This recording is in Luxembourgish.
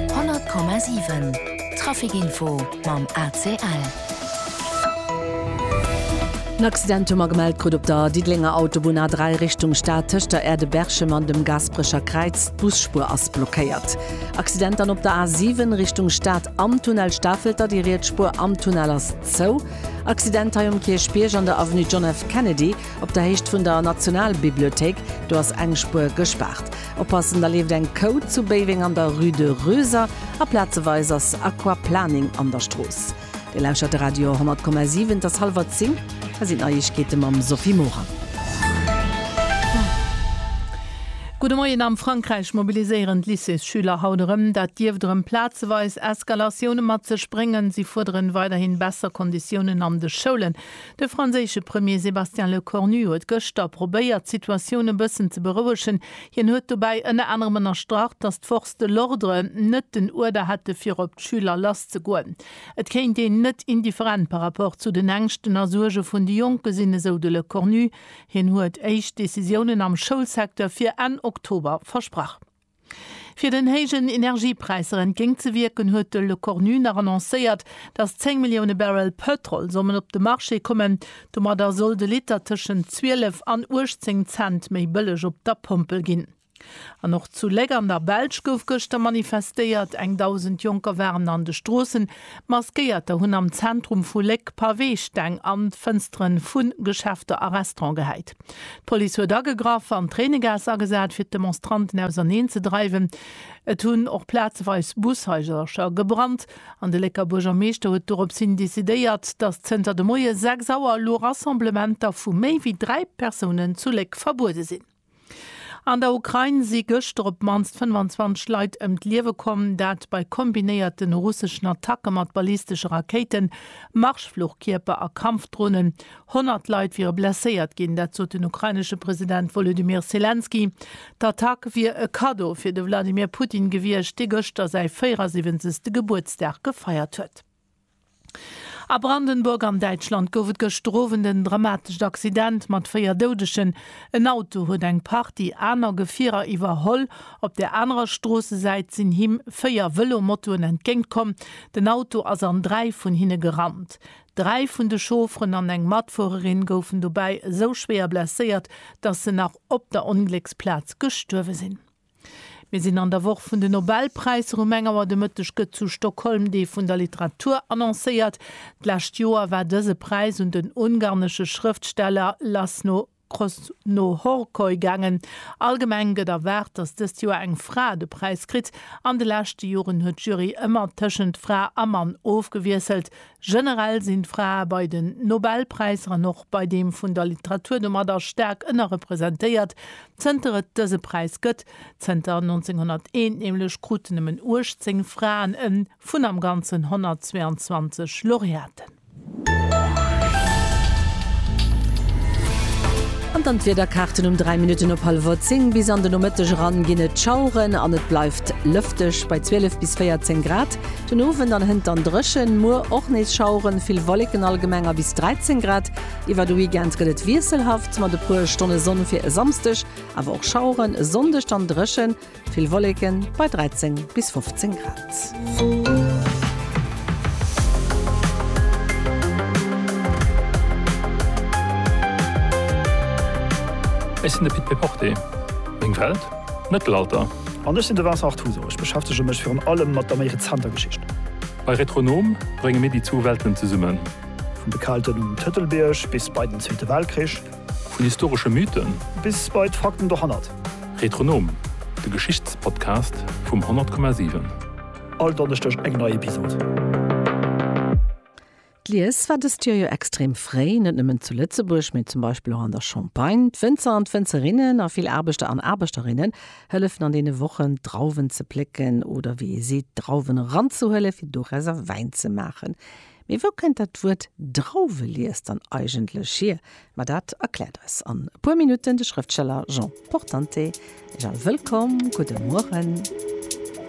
100,7 Trafic Info mam ACL. En Accident hu mer gemellt krut op der Diddelenger Autobunn A3 Richtung Stad tëscht der Aire de Berchem an dem Gaasperecher Kräiz. D'Busspuer ass blockéiert. Accident dann op der A7 Richtung Stad am Tunnel Stafelter, déi riets Spuer am Tunnel ass zou. Accident hei um Kierchbierg an der Avenue John F. Kennedy op der Héicht vun der Nationalbibliothéik, do ass eng Spuer gespaart. Oppassen, da leeft eng Kou zu Béiweng an der Rue de Röser a plazeweis ass Aquaplaning an der Strooss. Dir lauschert de Radio 100,7. Et ass hallwer 10, hei sinn d'Neiegkeete mam Sophie Morang. Gudde Moien, Am Frankräich mobiliséieren d'Lycéesschüler haut erëm. Dat dierft erëm plazeweis Eskalatioune mat sech bréngen. Si fuerderen weiderhin besser Konditiounen an de Schoulen. De franséische Premier Sébastien Lecornu huet gëschter probéiert, d'Situatioun e bëssen ze berouegen. Hien huet dobäi ënner anerem ënnerstrach, datt d'Forces de l'ordre net den Uerder hätte fir op d'Schüler lasszegoen. Et kéint een net indifferent par rapport zu den Ängschten a Suerge vun de Jonke sinn, esou de Lecornu. Hien huet éischt Decisiounen am Schoulsecteur fir Enn Oktober versprach. Fir den héijen Energiepräisser entgéint ze wierken, huet de Le Cornu nach annoncéiert, datt 10 Millioune Barrel Pëtrol sollen op de Marché kommen. Domadder soll de Liter tëschent 12 an 18 Cent méi bëlleg op der Pompel ginn. An och zu Léck an der Belsch gouf gëschter manifestéiert. Eng Dausend Jonker waren an de Stroossen. Maskéierter hunn am Zentrum vu Léck Paweesteng an d'Fënstere vu Geschäfter a Restaurante gehäit. D'Police huet agegraff an Tréinegaass agesat, fir d'Demonstranten auserneen ze dreiwen. Et hunn och plazeweis Bushaisercher gebrannt an de Lécker Buergermeeschter huet doropshin decidéiert, datt zënter de Moie 6 Auer elo Rassemblementer vu méi wéi dräi Persounen zu Léck verbuede sinn. An der Ukrain si gëschter op d'mannst 25 Leit ëm d'Liewe komm, dat bei kombinéierte russeschen Attacke mat ballistesche Rakéiten, Marschfluchkierper a Kampfdronen. 100 Leit wiere blesséiert ginn, dat sot den ukrainesche President Wolodymyr Selenskyj. D'Attack wier e Kaddo fir de Wladimir Putin gewiescht, dee gëschter säi 74. Gebuertsdag gefeiert huet. A Brandenburg an Däitschland gouf et gëschter Owend en dramatescht Accident mat 4 Doudegen. En Auto huet eng Partie aner Gefierer iwwerholl. Op der anerer Stroossesäit sinn him 4 Vëlo-Motoen entgéintkomm. Den Auto ass an 3 vun hinne gerannt. Dräi vun de Chaufferen an eng Matfuererin goufen dobäi esou schwéier blesséiert, dass se nach op der Onglécksplaz gestuerwe sinn. Mir sinn an der Woch vun de Nobelpräisser. Um eng Auer de Mëtteg gëtt zu Stockholm Dee vun der Literatur annoncéiert. D'lescht Joer war dëse Präis un den ungarnesche Schrëftsteller Laszlo Cross no Horcoy gaangen. Allgemeng gëtt erwaart, datt dëst Joer eng Fra de Präis kritt. An de leschte Joren huet d'Jury ëmmer tëschent Fra a Mann ofgewiesselt. Generell sinn d'Frae bei den Nobelpräisser an och bei deem vun der Literatur domadder staark ënnerrepresentéiert, zënter et dëse Präis gëtt. Zënter 1901 nämlech kruten nëmmen 18 Fraen e vun am Ganzen 122 Laureaten. An dann d'Wiederkaarten, Um 3 Minutten op hallwer 10 bis an de Nomëtteg eran ginn et Schaueren an et bleift lëfteg bei 12 bis 14 Grad. Den Owend an hënt dann dréchen, muer och nees Schaueren, vill Wolleken, allgemeng a bis 13 Grad. Iwwer de Weekend gëtt et wiesselhaft mat e puer Stonne Sonn fir e Samsdeg, awer och Schaueren, e Sonndeg dann dréchen. Vill Wolleken bei 13 bis 15 Grad. Ech sinn de Pit Péporté. Meng Welt, d'Mëttelalter. An ech sinn de Vincent Artuso. Ech beschäftege mech virun allem mat der méi rezenter Geschicht. Bei Retronom brénge mir déi zwou Welten zesummen. Vum bekaalten Tëtelbierg bis bei den Zweete Weltkrich. Vun historesche Mythen. Bis bei d'Fakten dohannert. Retronom, de Geschichtspodcast vum 100,7. All Donneschdeg eng nei Episod. D'Lies war dëst Joer jo extrem fréi, net nëmmen zu Lëtzebuerg, mee zum Beispill och an der Champagne. D'Wënzer an d'Wënzerinnen a vill Aarbechter an Aarbechterinnen hëllefen an deene Wochen, d'Drauwen ze plécken oder, wéi ee seet, d'Drauwen eranzehuelen, fir dorausser Wäin ze maachen. Mee wou kënnt dat Wuert Drauwelies dann eigentlech hier? Ma dat erkläert eis an e puer Minutten de Schrëftsteller Jean Portante. Erich All, wëllkomm, gudde Mueren.